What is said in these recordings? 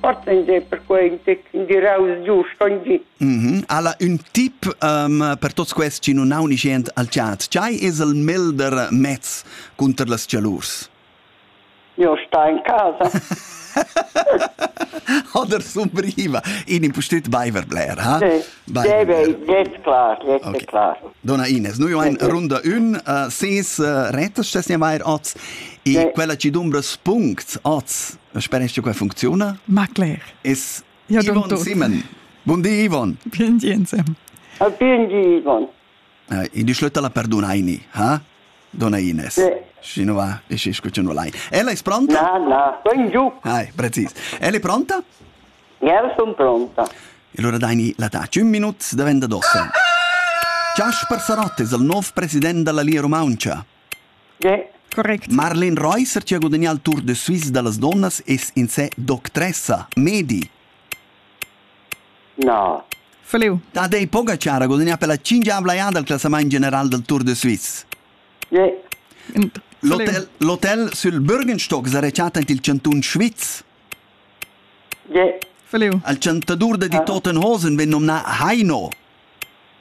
Fortende per quei giraus giust ogni. Mm -hmm. Alla un tip um, per tots questi chi non ha un igient al chat. Chai es el melder mezz cunter las cialurs? Io sta in casa. Oder sumbriva in impustüt baiver bler, ha? Sì. Deve, jetzt klar, jetzt okay. klar. Donna Ines, noi ein runda un, uh, ses uh, retas stesnia vair oz, e quella ci dumbra spunct oz Spanisch qua funcziona? Ma cler. Es ja, Ivan Simon. Bun di, Ivan. Bien di, insem. Ah, bien di, Ivan. Uh, in di schlötta la perdunaini, ha? Donna Ines. Sì. Sino va e ci escucciano lei. Ella è pronta? No, no, ben giù. Hai, precis. Ella è pronta? Ja, sono pronta. E allora dai la taci, un minuto daventa d'ossa. Ciaspar Sarottes, il nuovo presidente della Lia Romancia. Correct. Marlene Reusser che ha gudagnà il Tour de Suisse da las donnas es in sé doctressa, medi. No. Feliu. Tadej Pogacar ha gudagnà per la cingiavla eada al classament general del Tour de Suisse. Yeah. L'hotel, l'hotel sul Bürgenstock sa rechatta int il chantun Schwyz. El chantadur da die Toten Hosen vegn nomnà Heino.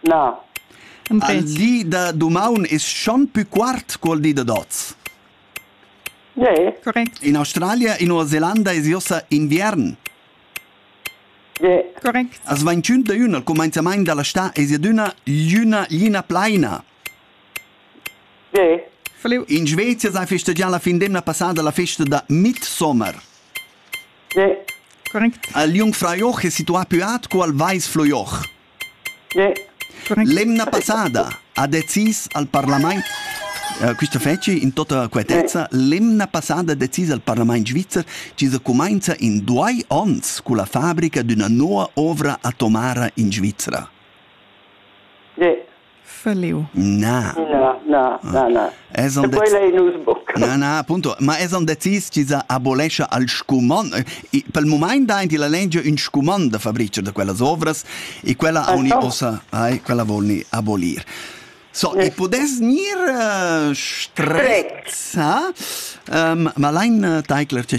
Na. Al di da dumaun es schon pü quart cu'l di da dots. Yeah. Correct. In Australia, in Nova Zelanda es josa inviern. Yeah. Correct. As 21 da üna, al cumainzamaint da la stà es adüna l'üna lina plaina. In Svezia sa festegià la fin d'emna passada la festa da Mitsommer. Il Jungfraujoch è situà più aut co al Weißflurjoch. L'emna passada ha decis al parlament eh, questa festa in tutta quietezza, l'emna passada ha decis al parlament svizzer che se comincia in due ons con la fabbrica d'una nuova ovra atomara in Svizzera. Verleo. Na. Na, na, na, na. Esan Quella ei nus buca. Na, na, appunto. Ma esan decis chi sa abolescha al scumond. Per il moment dain ti la legia un scumond da fabricar da quellas ovras e quella auni ossa, ai, quella vol ni abolir. So, e pudess gnir uh, strezza, um, ma lein uh, taicler che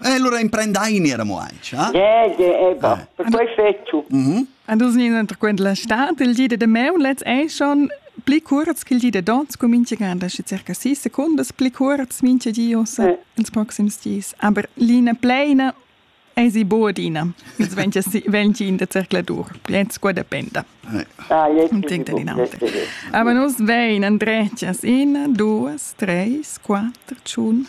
E allora imprendaini era mo anche, eh? Ja, ja, eba. Eh. Per quei fetto. Mhm. An dus ni unterquent la stad, il di de meun letz ei schon pli kurz ch'il di de dons comince ganda schi circa 6 secondas pli kurz minche di ossa eh. ils proxims dis. Aber linea pleina ei si boadina. Jetzt wenn si wenn in der Zerkladur. Jetzt qua dependa. Ah, jetzt denkt in alter. Aber nus vein andretas in 2 3 4 tschun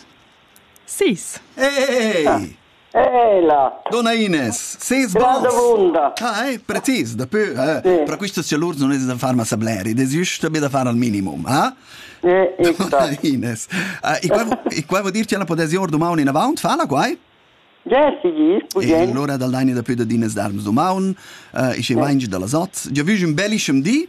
Sis. Ei! Ela! Donna Ines, ses bos! Granda vunda! Hai, precis, daplü, eh, sì. per quistas chalurs non es da far massa bler, id es jüst be da far al minimum, eh? Eh, Donna Ines. Uh, e qua, e qua vuol dir che la podesi or dumaun inavant, fala quai? Ja, sigis, pugien. E allora dal daini da pü da dinas darms dumaun, uh, e schi vaingi da las ot. Già vüg ün bellischem di,